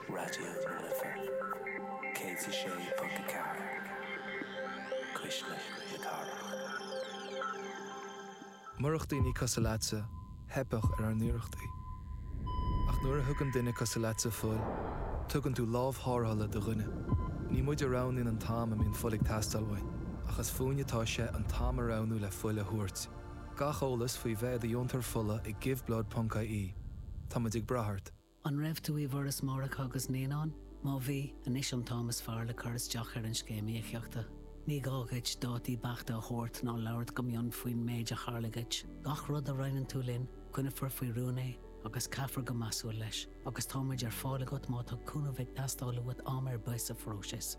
Raidió na Life 106.4, cuisle na cathrach. Murach daoine cosúil leatsa, theipfeadh ar ár n-iarrachtaí. Ach nuair a thugann duine cosúil leatsa fuil, tugann tú lámh tharrthála do dhuine. Ní muid a roghnaíonn an t-am a mbíonn fuil ag teastáil uainn, ach is fúinne atá sé an t-am a roghnú le fuil a thabhairt. Gach eolas faoi bheith i do dheontóir fola ag giveblood.ie. Táimid ag brath ort. An raibh tú i bhForas Máithreacha agus Naíonán? Má bhí, anois an t-am is fearr le cur isteach ar an Scéim Íocaíochta. Ní gá dhuit dátaí beachta a thabhairt ná labhairt go mion faoin méid a tharla dhuit. Gach rud a roinneann tú linn, coinneofar faoi rún é agus caithfear go measúil leis, agus táimid ar fáil agat má tá cúnamh ag teastáil uait am ar bith sa phróiseas.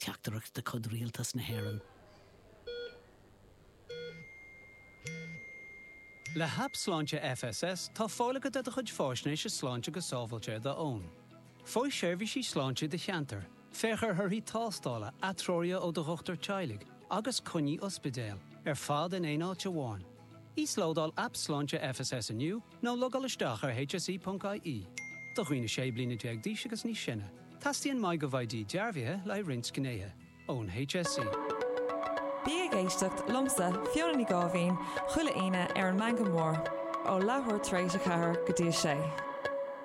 Teachtaireacht de chuid Rialtas na hÉireann. Le hAip Sláinte FSS tá fáil agat ar do chuid faisnéise sláinte go sábháilte ar d'fhón. Faigh seirbhísí sláinte i do cheantar, féach ar thorthaí tástála, atreoruithe ó do dhochtúir teaghlaigh agus coinní ospidéil, ar fad in aon áit amháin. Íoslódáil Aip Sláinte FSS inniu Nó logáil isteach ar hse.ie. Do dhaoine 16 bliana d'aois agus níos sine, teastaíonn MyGovID dearbhaithe le haghaidh roinnt gnéithe ón HSE. Bí ag éisteacht liomsa, Fiona Ní Gháibhín, chuile Aoine ar an Meangadh Mór, ó leathuair tar éis a ceathair go dtí a sé.